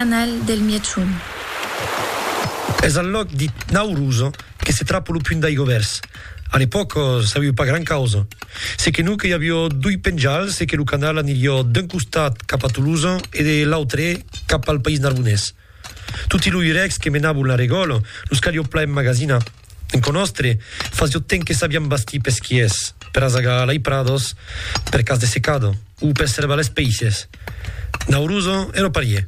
canal del Miechoun. Es al lòc dit Nauruz que se trapa lo punt d'aigo vèrs. A l'epòca sabiu pas gran causa. Se que non que i avió doi penjals e que lo canal anirió d'un costat cap a Toulouse e de l'autre cap al País Narbonés. Toti lo urècs que menabon la regòla los calió plan emmagasinar. Enco nòstre, fasió temps que sabiam bastir pesquiers per azagar lei prados per cas de secado o per servar les peisses. Nauruzo e lo parier.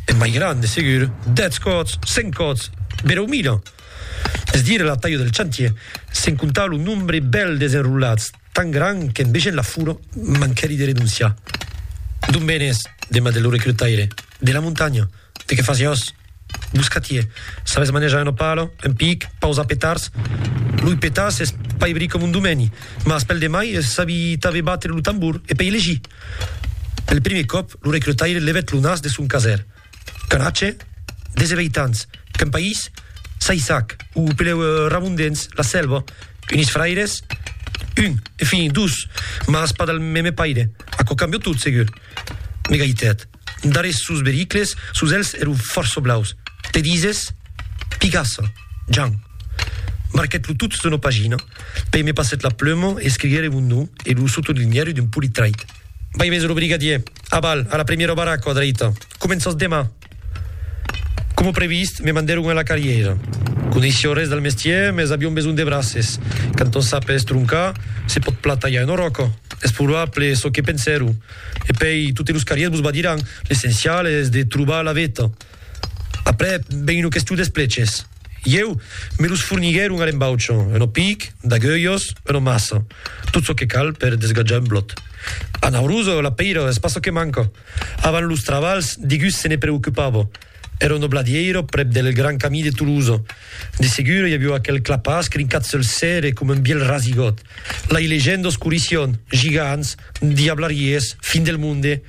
E mai grand, de segur, dètz còts, cent còts, bereu mila! Es dire la talha del chantier, sen comptar lo nombre bèl desenrolats, tan grand qu'en vegent la fura manquèri de renonciar. D'on venes? demandèt lo recrutaire. De la montanha. De qué fasiós? Muscatier, Sabes manejar una pala, un pic, pausar petards? Loi petar s'es pas ebri com un domeni, mas pel demai es sabi tanben batre lo tambor e pei legir. Pel primier còp lo recrutaire levèt lo nas de son caser. Canatge, Desevei tants, qu'un país s'aissac, o peleu Ramon dens la sèlva, unis fraires? Un, enfin, dos, mas pas del meme paire, aquò cambia tot segur. M'egalitat. Darrés sos bericles, sos èlhs ero fòrça blaus. Te dises? Pigassa. Jan. Marquèt lo tot d'una pagina. Pei me passèt la pluma e escriguère mon nom e lo sotolinhère d'un polit trait. Vai veser lo brigadier. Aval, a la premiera baraca a dreita. Començas demà. Coma previst, me mandèron a la carrièra. Coneissia res del mestièr, mès avion besonh de braces. Quand on sap estroncar, se pòt plan talhar una ròca. Es probable, çò que pensèron. E pèi, totes los carriers vos badiràn, l'essencial es de trobar la veta. Aprèp, ven una question d'espleches. Ieu, me los forniguèron a l'embaucha, una pic, d'agulhas, una massa. Tot çò que cal per desgatjar un blòt. A Naurusa, la pèira es pas çò que manca. Avant los trabalhs, digus se ne preocupava. Èra un obladièiro prèp del gran camí de Tolosa. De segur, i aviá aquel clapàs crincat sul cèrre coma un bièlh rasigot. Lai legendas corission, gigants, diablariés, fin del monde,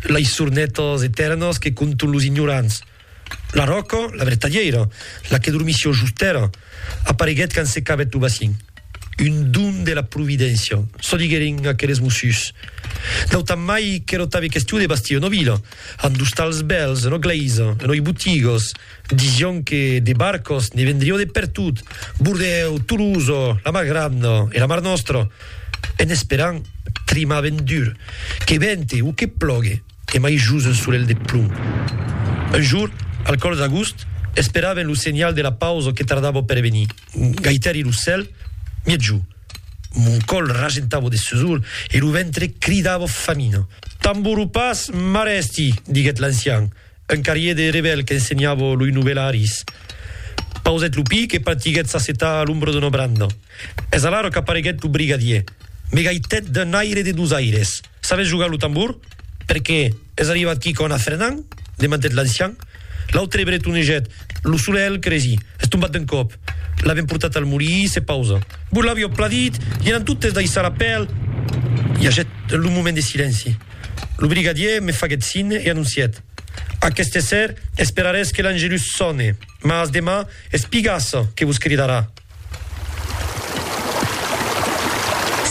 lai sornetas etèrnas que conton los ignorants. La ròca, la vertadièira, la que dormissi au just tèrra, apareguèt quand se cabèt lo bacin. Un don de la providéncia, çò diguèrin aqueles mossuts. Nautan mai qu'èra tanben question de bastir una vila, amb d'ostals bèls, una glèisa, unei botigas. Disián que de barcas ne vendrián de pertot, Bordèu, Tolosa, la Mar Granda e la Mar Nòstra. En esperant, trimaven dur, que vente o que plogue. Tremai jos un solelh de plom. Un jour, al còr d'agost, esperaven lo senhal de la pausa que tardava per venir. Gaitari lo cèl, miètjo. Mon còl rajentava de susor e lo ventre cridava famina. Tamboro pas, mare esti, diguèt l'ancian, un carrier de rebèl qu'ensenhava loi novelaris. Pausèt lo pic e partiguèt s'assetar a l'ombra d'una branda. Es alara qu'apareguèt lo brigadier. Me gaitèt d'un aire de dosaires. Sabes jogar lo tambor? Perqué es arribat quí con Afrenan? demantèt l'ancian. L'autre bretonejèt lo solelh que resi, es tombat d'un còp. L'avèm portat al molí, se pausa. Vos l'avió pladit, i anan totes daissar la pèl! I agèt lo moment de silenci. Lo brigadier me faguèt signe e anoncièt, Aqueste ser esperarés que l'Angelus sòne, mas demà es Pigassa que vos cridarà.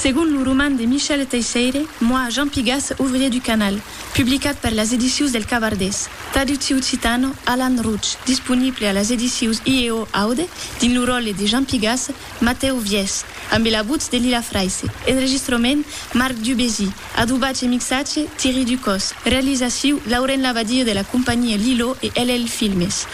Segon lo roman de Michel Teisseire, Moi, Jean Pigas, ouvrier du canal, publicat per las edicius del Cavardés, traducciu occitan, Alan Rouch, disponible a las edicius IEO Aude, dins lo ròtle de Jean Pigas, Matèu Viès, ambe la votz de Lila Fraisse, enregistrament, Marc Dubésy, adobatge e mixatge, Thierry Ducos, realizaciu, Laurent Labadie de la companhia Lilo e LL Filmes.